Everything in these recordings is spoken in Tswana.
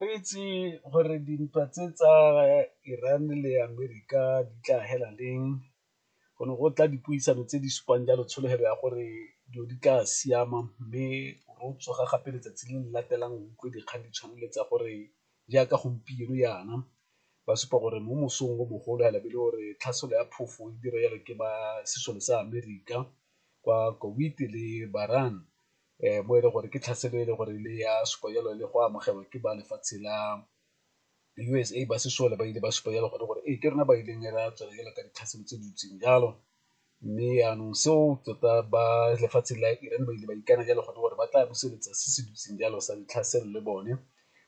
Re itse gore dintwa tse tsa Iran le Amerika di tla hela leng, go ne go tla dipuisano tse di supang jalo tsholofelo ya gore dilo di tla siama mme ro tsoga gape letsatsi le le latelang o utlwe dikgang di tshwana le tsa gore jaaka gompieno jaana ba supa gore mo mosong o mogolo fela be e le gore tlhaselo ya phofo e dira jalo ke ba sesole sa Amerika kwa le Bahrain mo e leng gore ke tlhaselo e leng gore le ya supa jalo le go amogelwa ke ba lefatshe la U_S_A ba sesole ba ile ba supa jalo gone gore ee ke rona ba ileng ra tswela jalo ka ditlhaselo tse di ntseng jalo. Mme yanong seo tota ba lefatshe la Iran ba ile ba ikana jalo gone gore ba tla buseletsa se se dutseng jalo sa ditlhaselo le bone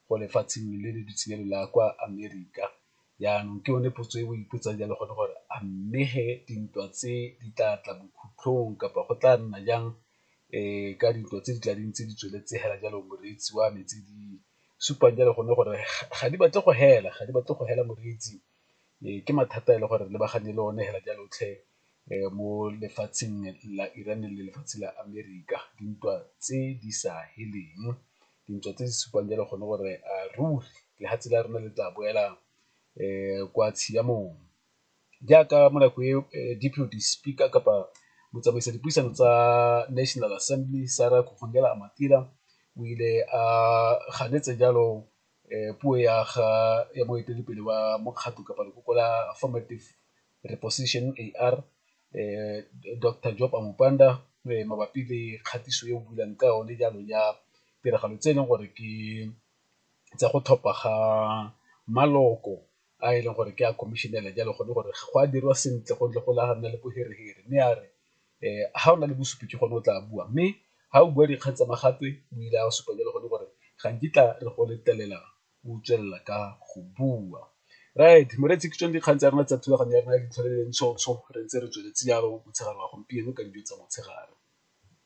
ko lefatsheng le le dutseng jalo la kwa Amerika. Yanong ke yone potso e o ipotsang jalo gone gore a mme he dintwa tse di tla tla bokhutlhong kapa go tla nna jang ka dintwa tse di tla dintse di tsweletse hela jalo moreetsi wa me, tse di supang jalo gone gore ga di batle go hela, ga di batle go hela moreetsi. Ke mathata a e le gore re lebagane le one hela jalo tlhe mo lefatsheng la Iran le lefatshe la Amerika, dintwa tse di sa heleng, dintwa tse di supang jalo gone gore ruri lefatshe la rona le tla boela kwa tshiamong. jaaka mo nako e Deputy Speaker kapa motsamaisa dipuisano tsa National Assembly Sarah Amatira o ile a ganetsa jalo puo ya ga ya moeteledipele wa mokgatlho kapa lekoko la Affirmative Reposition, AR, Doctor Job Amupanda mabapi le kgatiso e o builang ka yone jalo ya tiragalo tse e leng gore ke tsa go tlhopha ga maloko a e leng gore ke a commissionela jalo gone gore go a dirwa sentle go ntle go la nna le boherehere mme a re um ga o na le bosupi ke gone o tla bua mme ga o bua dikgang tsa magatwe o ile a supa jalo gone gore ga nkitla re go letelela o tswelela ka go bua right moreetsi ke tsone dikgang tsa rona tsa thulaganyo ya rona ya ditlhole le ntshotsho re ntse re tsweletse jalo motshegare wa gompieno ka dijo tsa motshegare